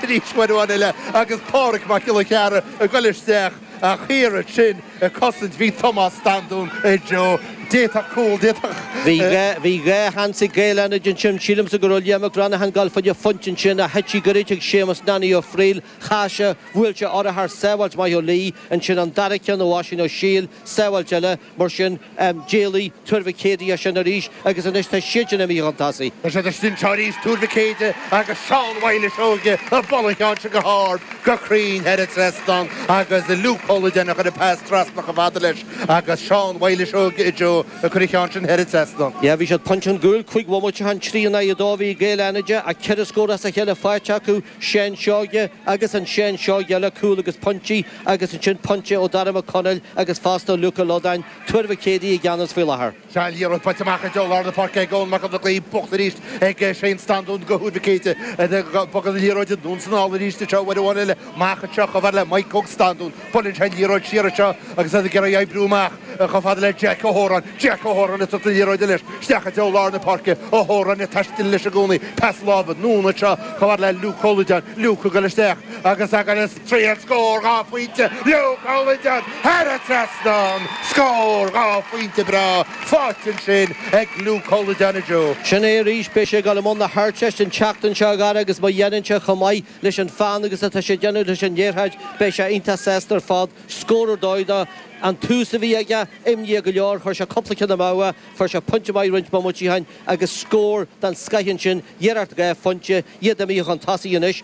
Arís bhain Eoghan Uile agus Pádraig Mac Giolla Chearra ag goil isteach ach thiar ansin ag cosaint bhí Tomás Standún, anseo, d'fhéadfadh cúl, d'fhéadfadh. Bhí dhá sheans ag Gaeil Fhánada ansin. Sílimse go raibh Liam Mac Reannacháin ag goil fá choinne pointe ansin ach thit sí goirid ag Séamas Nanny Ó Fríl, chas sé, bhuail sé urchar, sábháilt maith Ó Laoi, ansin an dara ceann ó Oisín Ó Siail, Sábháilt eile, mar sin, d'éalaigh Tuar Mhic Éadaigh as sin arís agus anois tá siadsan imithe chun tosaigh. Tá siad istigh anseo arís, Tuar Mhic Éadaigh agus Seán Mhyles Seoige, buailte ansin go hard, go cruinn thar an trasnán agus Luke Ó Loideáin a chuir an pas trasna chomh fada leis agus Seán Mhyles Seoige anseo ag cur an cheann sin thar an trasnán. Yeah, bhí siad pointe chun cúil, cúig bhomaite ó shin, trí in aghaidh a dó a bhí ag Gaeil Fhánada ach ceithre scór as a chéile faighte acu, Seán Seoige agus an Seán Seoige eile, cúl agus pointí. Agus ansin pointe ó Darragh Mac Conaill agus fosta Luke Ó Loideáin, Tuar Mhic Éadaigh i gceannas faoi láthair. Tá an liathróid faighte amach i dtreo lár na páirce ag Eoin Mac an Bhlocaigh, buaite arís ag Shane Standún do Thuar Mhic Éadaigh. Bogann an liathróid anonn is anall arís anseo uair amháin eile, amach anseo chomh fada le Mike Óg Standún, buaileann sé an liathróid siar anseo agus iad ag iarraidh oibriú amach chomh fada le Jack Ó hÓráin. Jack Ó hÓráin ag tabhairt na liathróide leis isteach i dtreo lár na páirce. Ó hÓráin ag taisteal leis i gcónaí. Pas láimhe, anonn anseo chomh fada le Luke Ó Loideáin. Luke ag goil isteach agus ag Triail scór dhá phointe Luke Ó Loideáin thar an trasnán. Scór dhá phointe breá faighte ansin ag Luke Ó Loideáin anseo. Sin é arís, beidh sé ag dul i mbun na hArdteiste an tseachtain seo, a Dhara, agus má dhéanann sé chomh maith leis an pheann agus atá sé ag déanamh leis an liathróid, beidh sé iontach sásta ar fad. Scór ar dóigh dó an tús a bhí aige, imníoch go leor, chuir sé cúpla ceann amú, fuair sé pointe maith roinnt bomaití ó shin agus scór den scoith ansin, iarracht dhá phointe, iad imithe chun tosaigh anois.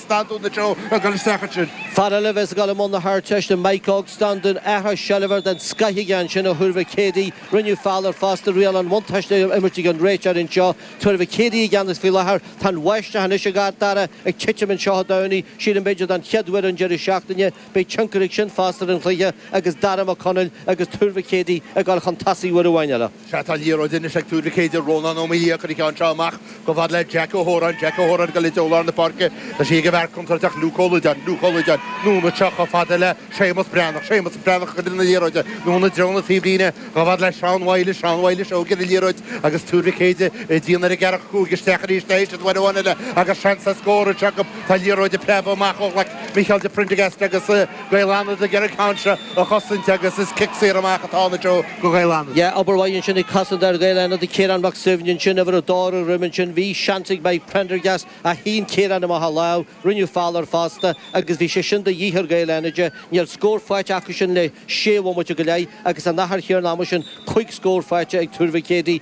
Standún anseo ag dul isteach ansin. Fear eile a bheas ag dul i mbun na hArdteiste, Mike Óg Standún, athrú seilbhe den scoith aige ansin ó Thuar Mhic Éadaigh, rinneadh feall air fosta, riail an bhuntáiste imeartha ag an réiteoir anseo, Tuar Mhic Éadaigh i gceannas faoi láthair, tá an bháisteach anois, a Dhara, ag titim anseo Dé Domhnaigh, sílim b'fhéidir don chéad uair an deireadh seachtaine, beidh tionchar aige sin fosta ar an chluiche agus Dara Mac Conaill agus Tuar Mhic Éadaigh ag dul chun tosaigh uair amháin eile. Sea, tá an liathróid anois ag Tuar Mhic Éadaigh, Rónán Ó Maoilí, ag cur an cheann seo amach chomh fada le Jack Ó hÓráin, Jack Ó hÓráin ag goil i dtreo lár na páirce, tá sí ag an bhfear contúirteach Luke Ó Loideáin, Luke Ó Loideáin, anonn anseo chomh fada le Séamus Breathnach, Séamus Breathnach ag cur na liathróide, anonn i dtreo na taobhlíne, chomh fada le Seán Mhyles, Seán Mhyles Seoige ar an liathróid, agus Tuar Mhic Éadaigh ag déanamh ar an gceathracha cúig isteach arís uair amháin eile, agus seans ar scór anseo acu, tá an liathróid ag preabadh amach ó ghlaic Micheál de Prindergast agus Gaeil Fhánada ag iarraidh an ceann seo a chosaint agus is cic saor amach atá ann anseo. Gaeil Fhánada. Yeah, obair mhaith ansin ag cosantóir Ghaeil Fhánada, Ciarán Mac Suibhne ansin, uimhir a dó ar a dhroim ansin. Bhí seans ag Mike Prendergast ach shín Ciarán amach a lámh, rinneadh feall air fosta agus bhí sé sin de dhíth ar Ghaeil Fhánada. Níl scór faighte acu sin le sé bhomaite go leith agus san achar chéanna ama sin, cúig scór faighte ag Tuar Mhic Éadaigh.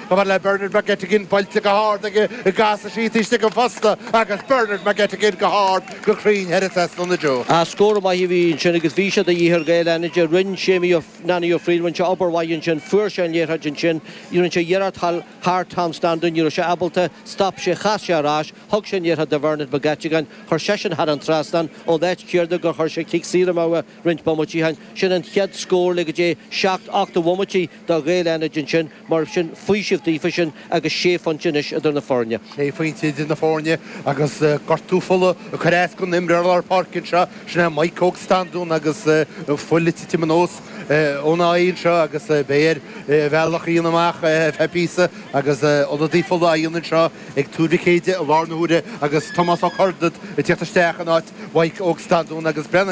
Comhairle le Bernard McGettigan buailte go hard aige casann sí taobh istigh den phosta agus Bernard McGettigan go hard go cruinn thar an trasnán. Ach scór maith a bhí ansin agus bhí sé de dhíth ar Ghaeil Fhánada. Rinne Séimí Nanny Ó Frighil, rinne sé obair mhaith ansin, fuair sé an liathróid ansin, rinne sé iarracht a ghabháil thar Tom Standún, ní raibh sé ábalta, stop sé, chas sé ar ais, thug sé an liathróid do Bhernard McGettigan, chuir seisean thar an trasnán, ón áit chéanna gur chuir sé cic saor amú roinnt bomaití, sin an chéad scór le go dté seacht, ocht de bhomaití do Ghaeil Fhánada ansin. Mar sin, faoiseamh daofa sin agus sé phointe anois idir na foirne. Sé phointe idir na foirne agus gortú fola ag cur as don imreoir lár páirce anseo, sin é Maidhc Óg Standún agus fuil ag titim anuas óna aghaidh anseo agus beidh air a bhealach a dhéanamh amach ar feadh píosa agus ionadaí fola á dhéanamh anseo ag Tuar Mhic Éadaigh i láthair na huaire agus Tomás Ó Curdaid ag teacht isteach in áit Mhaidhc Óg Standún agus Brennan